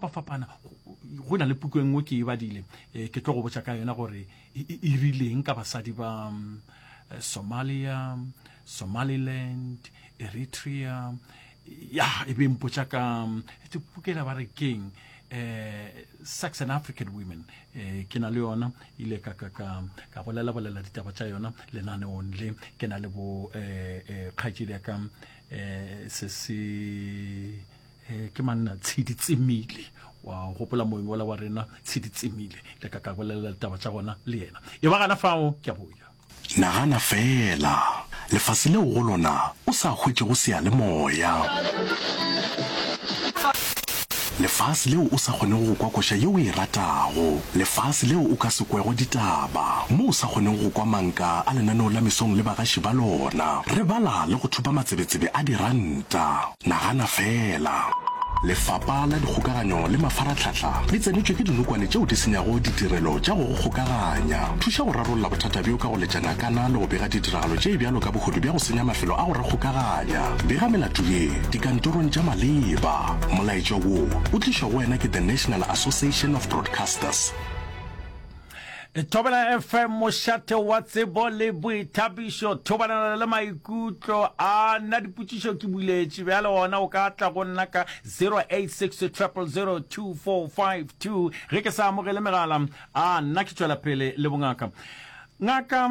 fapafapana go na le puku e nngwe ke e badile eh, ke tlo go botsa ka yona gore e, e, e rileng ka basadi ba mm, eh, somalia somaliland eritrea ya e be mpotsa ka mm, pukela ba re keng eh sex and african women eh ke na le yona ile ka ka ka ka bolela bolela ditaba tsa yona lenane onle ke na le bo eh, eh kgajile ka eh se se Eh, ke manna tshedi tsemile wa gopola moeng ola wa rena tshedi tsemile le ka ka bolelela ditaba tša gona le yena e ba gana fao ke a boya nagana fela lefase leo go lona o sa hwetšego seyalemoya lefase leo o sa kgonego go kwa koša yeo e ratago lefase leo o ka se kwego ditaba mo o sa kgonego go kwa manka a lenaneo la mesong le bagaši ba lona re bala le go thupa matsebetsebe a diranta Nagana feela! Lefapa la Dikgokaganyo le Mafaratlhatlha le tsenetšwe ke dinokwane tšeo di senyago ditirelo tša go go kgokaganya. Thuša go rarolla bothata bjo ka go letša ngakana le go bega ditiragalo tše bjalo ka bohodu bja go senya mafelo a go re kgokaganya. Bega melato ye dikantorong tša maleba. Molaetša wo o tlišwa go wena ke The National Association of Broadcasters. Thobela FM mošate wa tsebo le boithabišo thobalana le maikutlo a nna dipotšišo ke buletše bjale ona o ka tla go nna ka 0860002452 ge ke sa amogele megala a nna ke tšwela pele le bongaka ngaka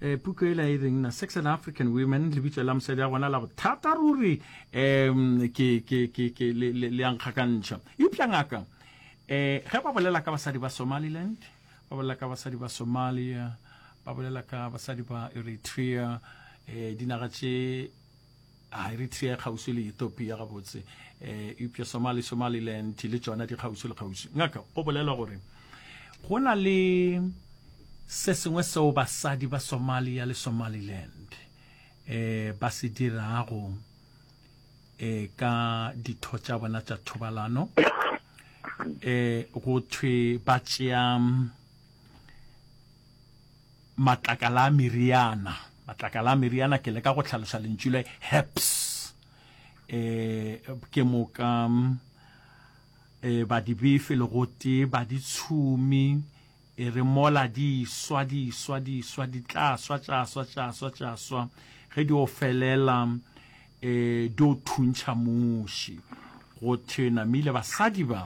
eh puku e la e reng na sex and african women le bitso la mosadi ya gona la bothata ruri um ke ke ke ke le le le yang kgakantšha eupša ngaka eh ge ba bolela ka basadi ba somaliland ba bolela ka basadi ba somalia ba bolela ka basadi ba eritrea eh dinaga tše A Eritrea e kgauswi le Ethiopia gabotse, eupša Somali, Somaliland, le tšona di kgauswi le kgauswi. Ngaka, go bolelwa gore go na le se sengwe seo basadi ba Somalia le Somaliland eh ba se dirago eh ka ditho tša bona tša thobalano eh go thwe ba tšea Matlakala a meriana. Matlakala a meriana, ke leka go tlhalosa lentšu le herbs. E, ke moka e, ba di befe le gote ba di tshumi e re mola di swa di swa di swa di tla swa tša swa tša swa tša swa ge di o felela e di o thuntšha muši go thena mile basadi ba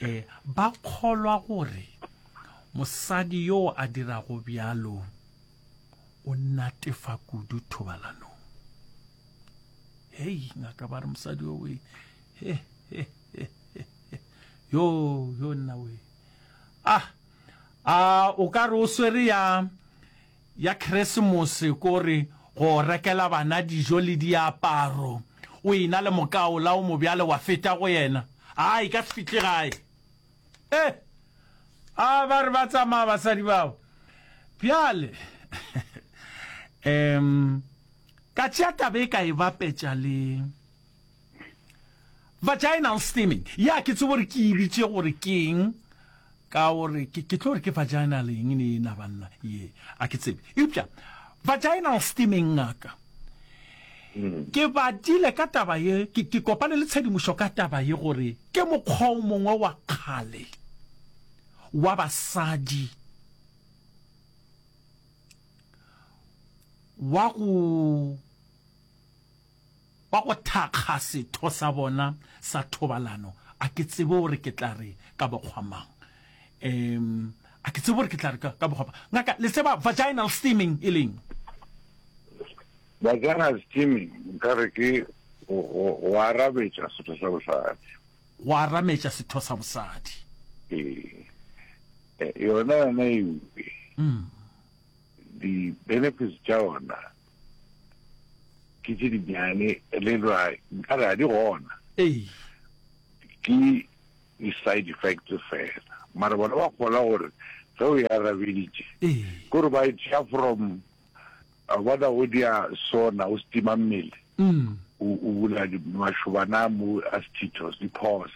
E, ba kgolwa gore mosadi yo a dirago bjalo o natefa kudu thobalanong. Hei, ngaka ba re mosadi yo we, he, he, he, he, he. yo, yo nna we. Ah, a o ka re o swere ya ya Kresemose ko re go rekela bana dijo le diaparo, o ena le mokaola o mobjale wa feta go yena. A e ka se fihle gae. E! A ba re ba tsamaya basadi bao. Bjale, em, ka tšea taba e ka e bapetša le. Vaginal steaming, ya ke tsebe gore ke e bitše gore keng ka gore ke ke tlo re ke vaginal eng ne ena banna ye a ke tsebe eupša vaginal steaming ngaka hmm. ke batile ka taba ye ke ke kopane le tshedimošo ka taba ye gore ke mokgwa o mongwe wa kgale wa basadi wa go wa go thakga setho sa bona sa thobalano, a ke tsebe gore ke tla re ka bokgwa mang, um, a ke tsebe gore ke tla re ka, ka bokgwa mang. Ngaka, le tseba vaginal steaming e leng? Vaginal steaming, nka re ke go, go, go arametša setho sa bosadi. Go arametša setho sa bosadi. Ee. E, yona, yona e uke. Mm. Di-benefits tša yona, ke tše dinyane le ra nkare ga di gona ke di-side effects fela mara bona ba kgola gore ge o ya rabeditše ke gore ba e tšea from bona o dia sona o setima mmele o bula mašobana mo astitos di-pos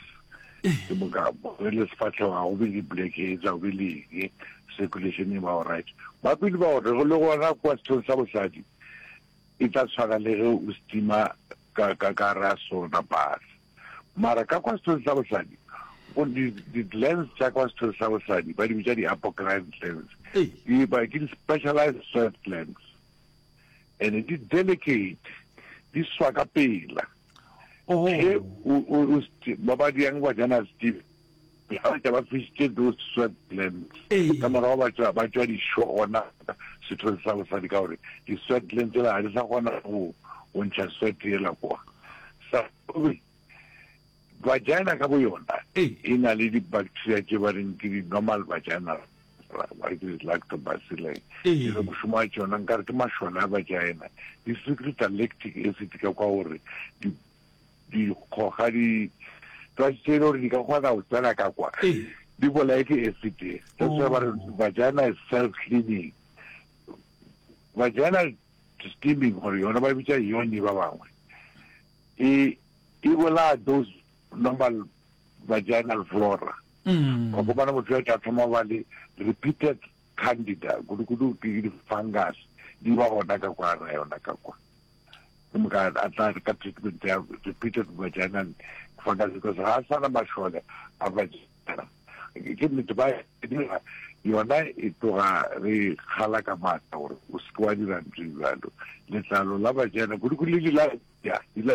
ke boka re le sefatlhego ga go be le blackheads ga go be leng circulation e ba alright ba pele ba gore go le gona kwa sethong sa bosadi e tla tshwana le ge o stima ka ka ka ra sona bus mara ka kwa sethong sa bosadi o di di lens tsa kwa sethong sa bosadi ba di bitsa di apocrine lens di ba ke di specialized soft lens and di delicate di swa ka pela Oh. Hey, u, u, u, sti- ba ba diang ba jana steve ga ba tša ba fisitše those sweatlands Ee. ka morago ba tšwa ba tšwa dišo gona setho se sa bosadi ka gore di-sweatland tsela ga di sa kgona go go ntšha sweat yela kwa sa vagina ka bo yona Ee. e na le di-bacteria tše ba reng ke di-normal vagina why did it like to basile e re mošomo wa tšona nkare ke mašole a vagina di secret electric e se tika kwa gore dikgoga di tsa tse e le gore di ka kgona go tsena ka kwa di bolae ke acid that's why ba re oh. vagina is self cleaning vagina steaming gore yona ba bitsa yone ba bangwe e e bolaya those normal vaginal flora wa go bona motho ya tla thoma ba le repeated candida kudu kudu ke di fungus di ba gona ka kwa ra yona ka kwa ke moka a tla ka treatment ya repeated vaginal fungus because ga a sana mašole a vagina ke nnete ba dira yona e tloga re kgala ka maatla gore o seke wa dira ntho jalo letlalo la vagina kudu kudu le dila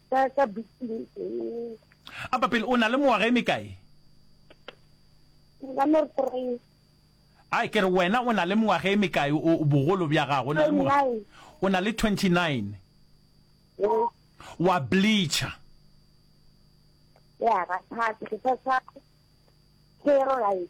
ka ka buking ee a papele o na le mengwaga e mekae nka no re three a ke re wena o na le mengwaga e mekae o o bogolo bja gago o na le mengwaga nine o na le 29 ee wa bleacher ya ga thata ke sa sa ke ro right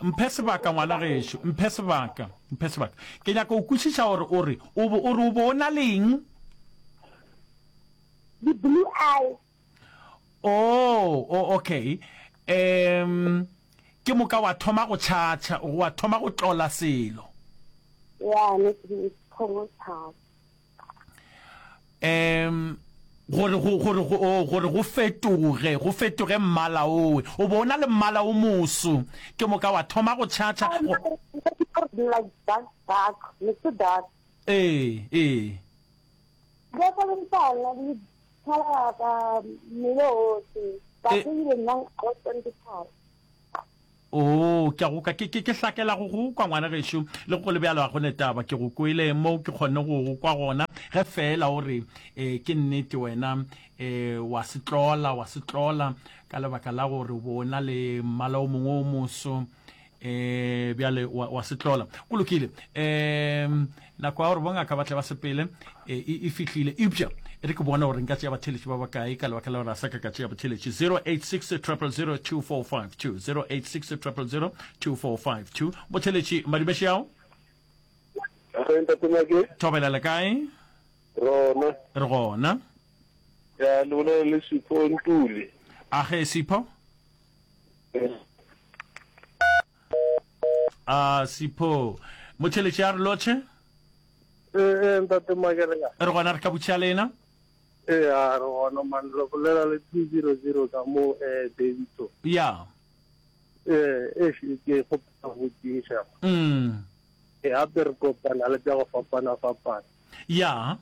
Mphe sebaka, ngwana gešo. Mphe sebaka. Mphe sebaka. Ke nyaka go kwešiša gore o re, o bo, o re o bo o na le eng? Di-blue eye. Oo, o, okay. Um, ke moka wa thoma go tšhatšha, wa thoma go tlola selo. Ya, ne ke, ke thoma go tšhatšha. um gore go gore go oh, gore go fetoge go fetoge mmala owe o bo o na le mmala o moso ke moka wa thoma go tšhatšha ee ee Oo, ke a go kwa, ke, ke, ke hlakela go go kwa, ngwana gešo. Le go go le bjalo, ga go ne taba, ke go kwele moo ke kgonne go go kwa gona, ge feela o re, E, ke nnete, wena, e, wa se tlola, wa se tlola, ka lebaka la gore o bo o na le mmala o mongwe o moso. E, bjale, wa, wa se tlola. Go lokile. E, nako ya gore bongaka ba tle ba sepele e, e, e fihlile eupša e re ke bona gore nka tšea batheletši ba bakae ka lebaka la gore a sa ka ka tšea botheletši 0860002452 0860002452 botheletši madimeši ao thobela le kae rona re gona ya le bolela le sipho ntuli a ge sipho a sipho motheletše a re lotšhe ee ee ntate makelega re gona re ka butšha lena ee a re gona man re bolela le two zero zero ka mo um eh, davitso ya ee e ke kgopela go tšiša mm e gape re kopana le tša go fapana fapana ya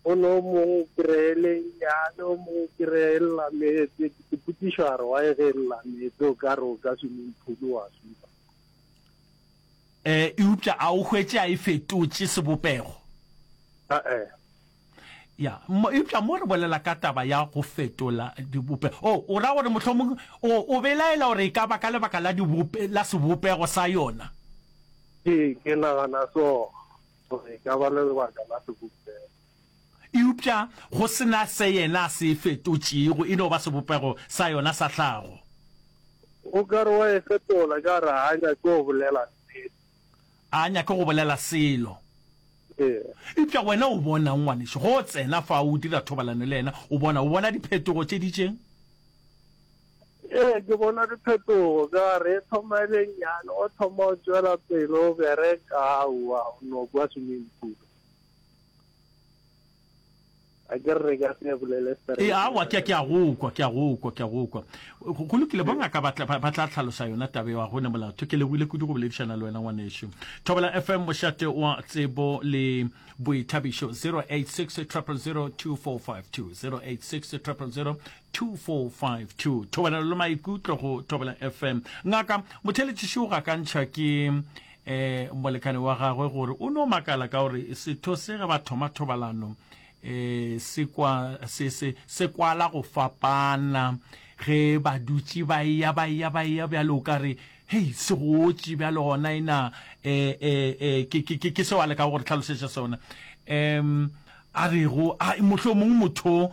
o no mong kry-ele nyane o mong kry-e llametse ke potšišo a re wa e ge llametse o ka re o ka swimming pool wa swipa um eupša a o hwetse a e fetotše sebopego ee ya eupša mo re bolela ka taba ya go fetola dibope o oh, o ra gore mohlomong o belaela gore e ka ba ka lebaka la sebopego sa yona ee ke nagana so Gore e ka ba le lebaka la sebopego. Eupša go se na se yena a se e fetotšego, e no ba sebopego sa yona sa tlhago. O ka re wa e fetola ka gore ga a nyake go bolela nnete. A nyake go bolela selo. Ee. Eupša wena o bonang, ngwanešu, ge o tsena fa o dira thobalano le yena, o bona, o bona diphetogo tše di tšeng? Ee, ke bona diphetogo ka re e thoma e le nnyane, o thoma o tšwela pele o bereka aowa o no kwa swimming pool. a ke re ka se bolele straight. E aowa ke ke a go kwa ke a go kwa ke a go kwa. Go lokile bo ngaka ba tla ba tla tlhalosa yona tabe wa gone molato ke leboile kudu go boledišana le wena ngwanešu. Thobela FM mošate wa tsebo le boithabišo 086 000 2452 086 000 2452 thobelelo le maikutlo go thobela fm ngaka motheletšiši o gakantšha ke um molekane wa gagwe gore o no makala ka gore setho se ge ba thoma thobalano um se kwa se se se kwala go fapana ge ba dutše ba eya ba eya ba eya bjale o ka re hei se gotše bjale gona ena um ke ke ke seo a leka go re tlhalosetša sona um a rego a mohlomongwe motho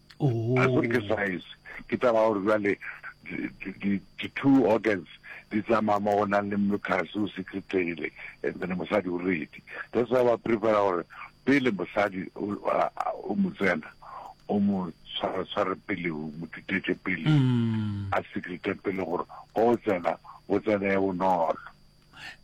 I think ke science ke taba gore jwale di-two organs di tsamaya mo go nang le mucus o se kgethegile and then mosadi o redi that's why ba prefera gore pele mosadi o mo tsena o mo tshwaratshware pele o mo tutetse pele mm. a secrete pele gore o tsena o tsene bonolo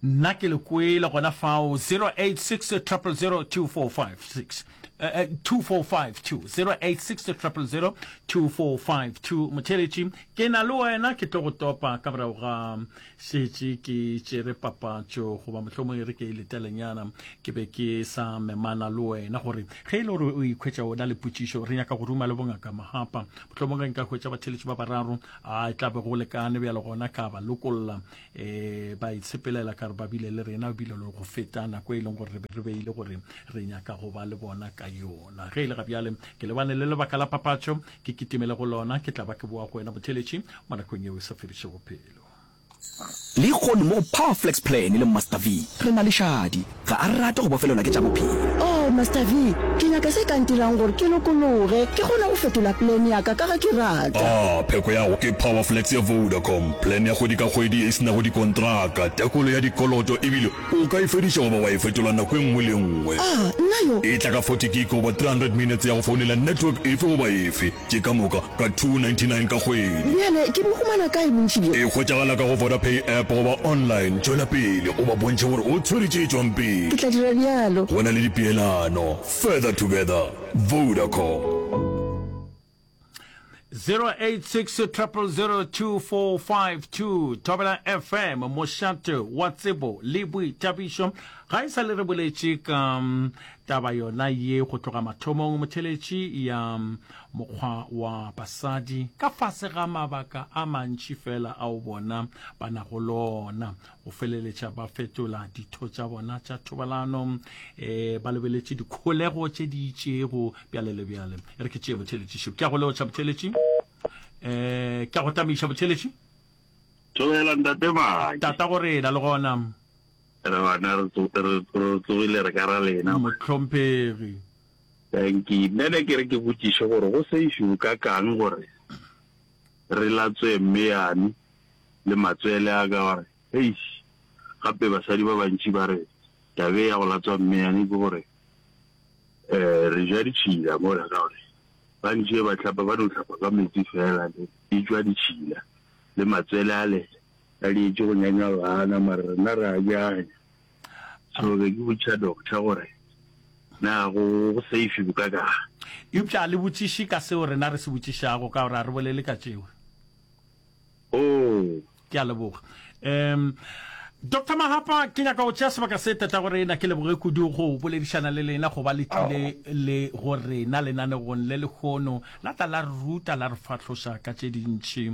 Nna ke le kwele gona fao 0860002456 2452 0860002452 motheletši ke na le wena ke tlo go topa ka morago ga šetše ke tšere papatšo goba mohlomong re ke e letelenyana ke be ke sa memana le wena gore ge e le gore o ikhwetša ona le potšišo re nyaka go ruma le bongaka mahapa mohlomong ge nka hwetša batheletši ba bararo a e tla be go lekane bjalo gona ka ba lokolla um ba itshepelela ka re ba bile le rena bile le go feta nako e leng gore re be re beile gore re nyaka go ba le bona ka yona ge e le ga bjale ke lebane le lebaka la papatšo ke kitimele go lona ke tla ba ke boa go wena motheletši mo nakong yeo e sa fediše bophelo le kgono mo go powerflex plan le master v re na le šadi Ga a rate go bofelelwa ke tša bophelo. Oh, Master Vee, ke nyaka se ka ntirang gore ke lokologe, ke kgone go fetola plan ya ka, ka ge ke rata. Ah, pheko ya go ke Powerflex ya Vodacom, plan ya kgwedi ka kgwedi e se nago dikontraka, tekolo ya dikoloto ebile o ka e fediša goba wa e fetola nako e nngwe le e nngwe. Ah, nna yo! E tla ka forty gig goba three hundred minutes ya go founela network efe goba efe. Ke ka moka ka 299 ka kgwedi. Bjale ke bo humana kae bontši bjo? E hwetšagala ka go Vodapay app goba online. Tšwela pele o ba bontšhe gore o tshwere tše tšwang pele. Ke tla dira bjalo. Go na le dipeelano. Further together. Vodacom. 0860002452 Thobela FM mošate wa tsebo le boithabišo ga e sa le re boletše ka mm, Taba yona ye go tloga mathomong motheletši ya mokgwa wa basadi ka fase ga mabaka a mantši fela ao bona ba nago lona, go feleletša ba fetola ditho tša bona tša thobalano e ba lebeletše dikholego tše di itšego bjale le bjale. E re ke tšee motheletši šo. Ke a go leotša motheletši. E, ke a go tamiša motheletši. Tšoela ntate Maki. Tata go rena le gona. Re gona re tsogile re ka ra lena. Mohlomphegi. Danki. Nna ne ke re ke botšiše gore go seifi go ka kang gore re latswe mme yane le matswele a ka gore eish gape basadi ba bantši ba re taba e ya go latswa mme yane ke gore um re ja ditšhila mola ka gore ba ntše ba tlhapa ba no tlhapa ka metsi fela le e tšwa ditšhila le matswele ale. Ba leetše go nyanywa bana mare rena re a nyanya. So be ke botšiša doctor gore na go safe bokakaang. Eupša a le botšiše ka seo rena re se botšišago ka gore a re bolele ka tšeo. Oo. Ke a leboga. Um Doctor Mahapa, ke nyaka go tšea sebaka se tatago rena ke leboge kudu go boledišana le lena go ba le tlile le go rena lenanegong le lekgono la tla la re ruta la re fahloša ka tše dintši.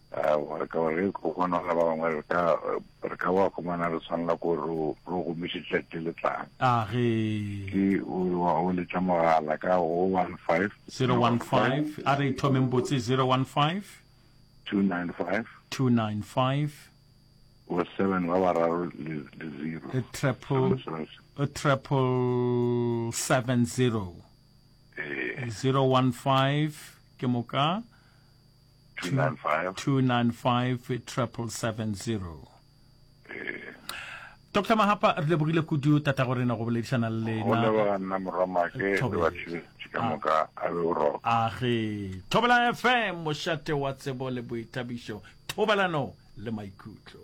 Aowa, ka gore ge go bona ba bangwe re ka re ka wa khomana re swanela ko re re gomiše tšatši le tlang. A ge. Ke o re wa o letša mogala ka go 015. 015 a re thomeng botse 015. 295. 295. Go seven ba bararo le le zero. A triple a triple seven zero. Ee. 015 ke moka. 295-770. Dr. Mahapa re lebogile kudu tata go rena go boledišana le lena. Age Thobela FM mošate wa tsebo le boithabišo thobalano le maikutlo.